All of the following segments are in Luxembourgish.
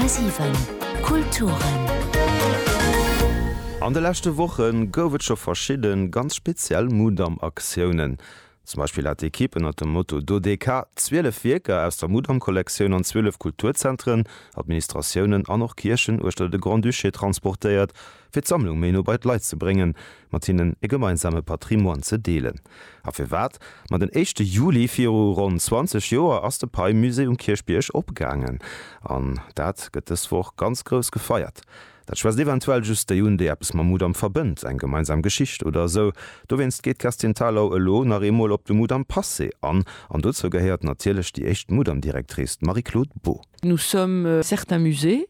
10,7 Kulturen. An de leschte Woche gouf et scho verschidde ganz speziell Mudam-Aktiounen. Zum Beispill hat d'Ekipp ënnert dem Motto Dodeka 12 Wierker aus der Mudam-Kollektioun an 12 Kulturzentren, Administratiounen an och Kierchen uechter de Grand-Duché transportéiert, fir d'Sammlung méi no bei d'Leit ze bréngen, mat hinnen e gemeinsame Patrimoine ze deelen. A firwat? Ma den éischte Juli viru ronn 20 Joer ass de Pei-Musée um Kierchbierg opgaangen. An dat gëtt dës Woch ganz grouss gefeiert. Dat schwätzt eventuell just déi un, déi eppes mam Mudam verbënnt, eng gemeinsam Geschicht oder esou. Dowéinst geet d'Kerstin Thalau elo nach eemol op de Mudam Passé an. An dozou gehéiert natierlech déi éischt Mudam-Directrice, d'Marie-Claude Beaud. Nous sommes certains musées,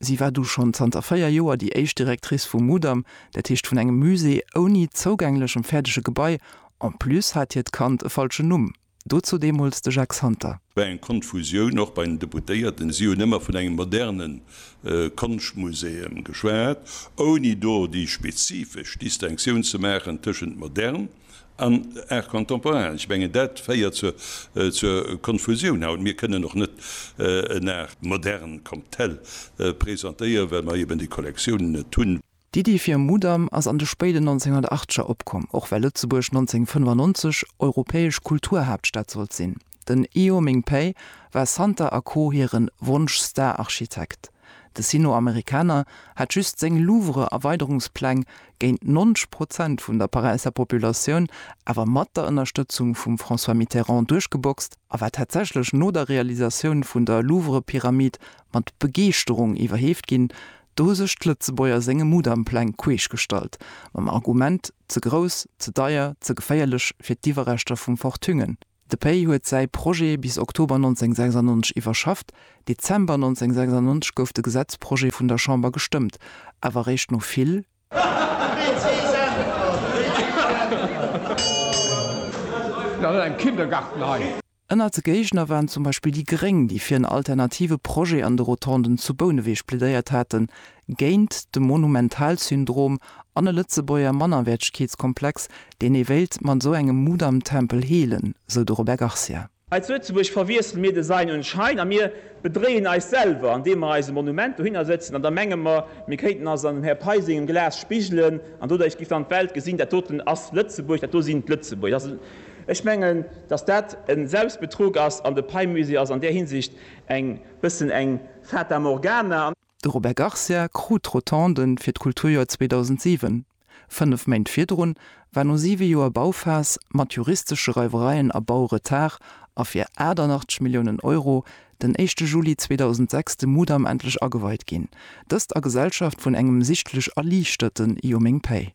Si war du schonn zanter véier Joer déi éischt Directrice vum Mudam, dat heescht vun engem Musée ouni zougänglechem fäerdege Gebai. En plus hat hiert Kand e falschen Numm. Dozou deemools de Jacques Santer. War eng Konfusioun, och bei den Deputéierten. Si hunn ëmmer vun engem moderne Konschtmuseum geschwat, ouni do déi spezifesch Distinctioun ze maachen tëschent modern, An Art contemporain, ech mengen dat féiert zur Konfusioun haut. Mir kënnen och net en Art moderne comme tel presentéieren, well mer eben déi Kollektiounen net hunn. D'Iddi fir e Mudam ass an de spéiden 1980er opkomm, och well Lëtzebuerg 1995 europäesch Kulturhaaptstad sollt sinn. Den Io Ming Pei war Santa a Co hiren Wonsch Star Architekt. De Sino Amerikaner hat just seng Louvre Erweiderungspläng géint 90 Prozent vun der Paräisser Populatioun awer mat der Ënnerstëtzung vum François Mitterrand duerchgeboxt a war tatsächlech no der Realisatioun vun der Louvre Pyramid mat Begeeschterung iwwerheeft ginn. Do hu sech d'Lëtzebuerger senge Mudam Pläng queesch gestallt mam Argument, ze grouss, ze deier, ze geféierlech fir d'Iwwerreschter vum Fort Thüngen. De Pei huet säi Projet bis Oktober 1996 iwwerschafft. Dezember 1996 gouf de Gesetzprojet vun der Chamber gestëmmt, awer eréischt no vill. Ënnert de Géigner waren zum Beispill déi Gréng, déi fir en alternative Projet an de Rotonden zu Bouneweg plädéiert haten, géint de Monumentalsyndrom an e Lëtzebuerger Mannerwäertegkeetskomplex, deen ee wéilt mat esou engem Mudamtempel heelen, sou de Robert Garcia. Hei zu Lëtzebuerg verwiessele mir Design un Schein a mir bedréien eis selwer, andeem mer eis e Monument dohinner sëtzen an da menge mer, mir kéinten eis an dem Här Pei sengem Glas spigelen an doduerch giff dann d'Welt gesinn, dat doten ass Lëtzebuerg, dat do sinn d'Lëtzebuerger. Ech mengen, dass dat e Selbstbetrug ass an de Pei-Musée ass an där Hinsicht eng bëssen eng Fata Morgana. De Robert Garcia krut d'Rotonde fir d'Kulturjoer 2007. Fënnef Méint virdrun war no siwe Joer Bauphas mat juristesche Reiwereien a Bauretard a fir 88 Milliounen Euro den éischte Juli 2006 de Mudam endlech ageweit ginn, dëst a Gesellschaft vun engem sichtlech erliichterten Yoming Pei.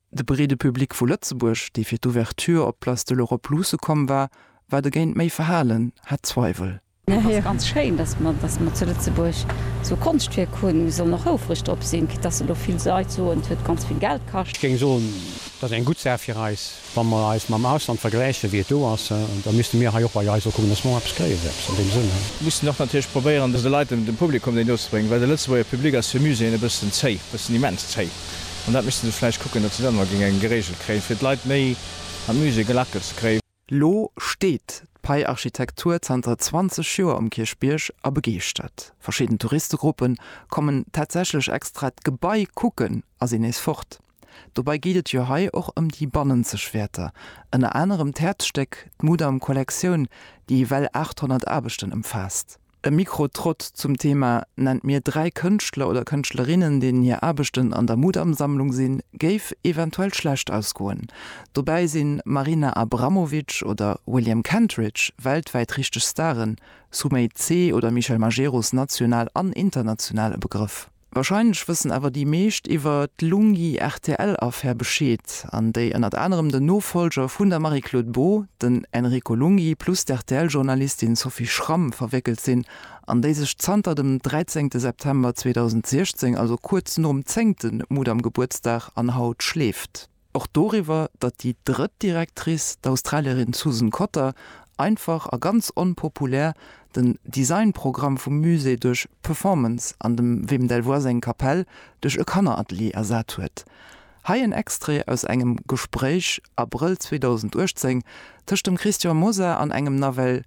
De breede Public vu Lëtzebuerg, dee fir d'Ouverture op d'Place de l'Europe luusse komm war, war dogéint méi verhalen, hat Zweiwel. Et ass ganz schéin, datt mer datt mer zu Lëtzebuerg esou e Konschtwierk hunn. Mir sollen och houfreg drop sinn, quitte datt se elo vill Leit soen, et huet ganz vill Geld kascht. Ech géing soen, et ass eng gutt Saach fir eis. Wa mer eis mam Ausland vergläichen, wéi et do ass, da misste mir hei och bei eis och kucken, datt mer och eppes kréien, eppes an deem Sënn. Mir missten och natierlech probéieren, de Leit, dem Publikum déi no ze bréngen, well de Lëtzebuerger Public ass fir Muséeën e bëssen zéi, e bëssen immens zéi. An dat misste se vläicht kucken, datt se dat emmer géingen geregelt kréien, fir d'Leit méi an d'Musée gelackelt ze kréien. Lo steet d'Pei-Architektur zanter 20 Joer um Kierchbierg a begeeschtert. Verschidden Touristegruppe kommen tatsächlech extra d'Gebai kucken a sinn nees fort. Dobei geet et jo hei och ëm déi bannenzeg Wäerter, ënner anerem d'Häerzstéck, d'Mudam-Kollektioun, déi ewell 800 Aarbechten ëmfaasst. E Mikrotrott zum Thema Nennt mir dräi Kënschtler oder Kënschtlerinnen, deenen hir Aarbechten an der Mudam-Sammlung sinn, géif eventuell schlecht ausgoen. Dobäi sinn Marina Abramovic oder William Kentridge weltwäit richteg Staren, Sumay Tse oder Michel Majerus national an international e Begrëff. Wahrscheinlech wëssen awer déi meescht iwwer d'Lunghi-RTL-Affär Bescheed, an déi ënnert anerem den Nofollger vun der Marie-Claude Beaud, den Enrico Lunghi, plus d'RTL-Journalistin Sophie Schramm verwéckelt sinn, an déi sech zanter dem 13 September 2016, also kuerz nom zéngte Mudam-Gebuertsdag, an haut schleeft. Och doriwwer, datt déi drëtt Directrice, d'Australierin Susan Cotter, einfach a ganz onpopulär den Design-Programm vum Musée duerch Performance an dem Wim Delvoye seng Kapell duerch e Kanneratelier ersat huet. Hei en Extrait aus engem Gespréich, Abrëll 2018, tëscht dem Christian Mosar an engem nawell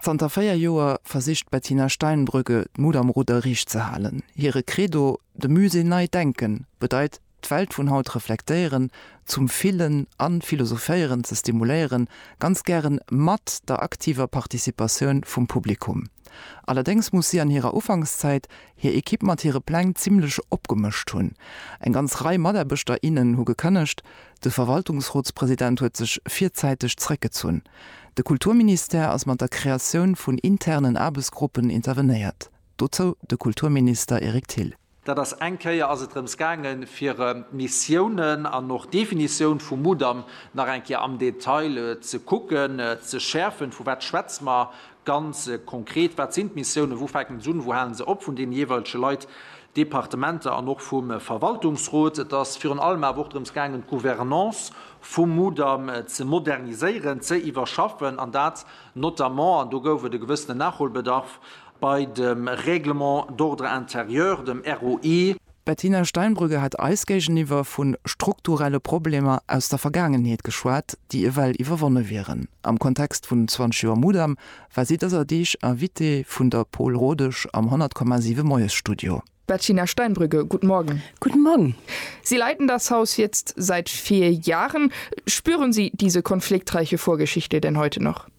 Zanter véier Joer versicht d'Bettina Steinbrügge d'Mut am Rudder riicht ze halen. Hire Credo, De Musée nei denken, bedeit, d'Welt vun haut reflektéieren, zum Fillen a Philosophéieren ze stimuléieren, ganz gären mat der aktiver Participatioun vum Publikum. Allerdéngs muss si an hirer Ufankszäit hir Ekipp mat hire Pläng zimmlech opgemëscht hunn. Eng ganz Rei Mataarbechter, innen hu gekënnegt, De Verwaltungsrotspresident huet sech virzäiteg zréckgezunn. De Kulturministère ass mat der Kreatioun vun internen Aarbechtsgruppen intervenéiert. Dozou de Kulturminister Eric Thill. Dat ass, Eng Kéier ass et drëms gaangen, fir Missiounen an och d'Definitioun vum Mudam nach eng Kéier am Detail ze kucken, ze schäerfen, vu wat schwätze mer, ganz konkret, wat sinn d'Missiounen, wou fänken se un, wou halen se op, vun deene jeeweilege Leit, Departementer an och vum Verwaltungsrot. Et ass virun allem awer och drëms gaangen, d'Gouvernance vum Mudam ze moderniséieren, ze iwwerschaffen, an dat notamment, an do gouf et e gewëssenen Nachholbedarf, bei dem Règlement d'ordre intérieur, dem ROI. D'Bettina Steinbrügge hat eis géigeniwwer vu strukturelle Problemer aus der Vergaangenheet geschwat, déi ewell iwwerwonne wieren. Am Kontext vun 20 Joer Mudam war si dëser Deeg Invitée vun der Paul Rodesch am 100,7 Moiesstudio. Bettina Steinbrügge, guten Morgen. Guten Morgen. Sie leiten das Haus jetzt seit vier Jahren. Spüren Sie diese konfliktreiche Vorgeschichte denn heute noch?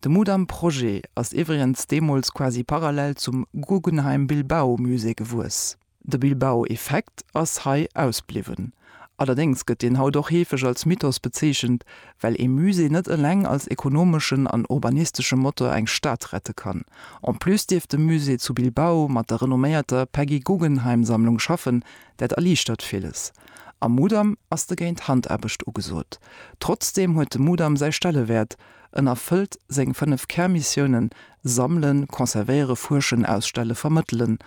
De Mudam Projet ass iwwregens deemools quasi parallel zum Guggenheim Bilbao Musée gewuess. De Bilbao Effekt ass hei ausbliwwen. Allerdéngs gëtt deen haut och heefeg als Mythos bezeechent, well ee Musée net eleng als ekonomeschen an urbanistesche Motor eng Stad rette kann. En plus dierf de Musée zu Bilbao mat der renomméierter Peggy Guggenheim Sammlung schaffen, dat erliichtert villes. Am Mudam ass dogéint Handaarbecht ugesot. Trotzdeem huet de Mudam säi Stellewäert. En erfëllt seng fënnef Kärmissiounen, Sammelen, Conservéieren, Fuerschen, Ausstellen, Vermëttelen.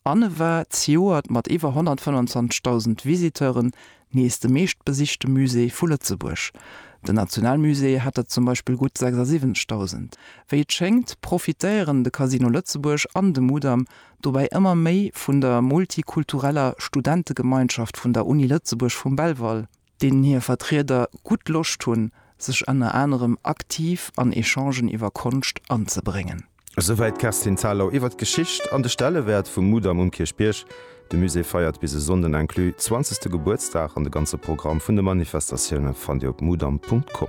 An e war zejoert mat iwwer 125.000 Visiteuren nees de meeschtbesichte Musée vu Lëtzebuerg. Den Nationalmusée hat der zum Beispill gutt 76.000. Wéi et schéngt, profitéieren de Casino Lëtzebuerg an de Mudam dobäi ëmmer méi vun der multikultureller Studentegemeinschaft vun der Uni Lëtzebuerg vum Belval, deenen hir Vertrieder gutt Loscht hunn, sech ënner anerem aktiv an Echangen iwwer Konscht anzebréngen. Esouwäit d'Kerstin Thalau iwwer d'Geschicht an de Stellewäert vum Mudam um Kierchbierg. De Musée feiert bis e Sonnden inclus zwanzegste Gebuertsdag an de ganze Programm vun de Manifestatioune fannt Dir op mudam.com.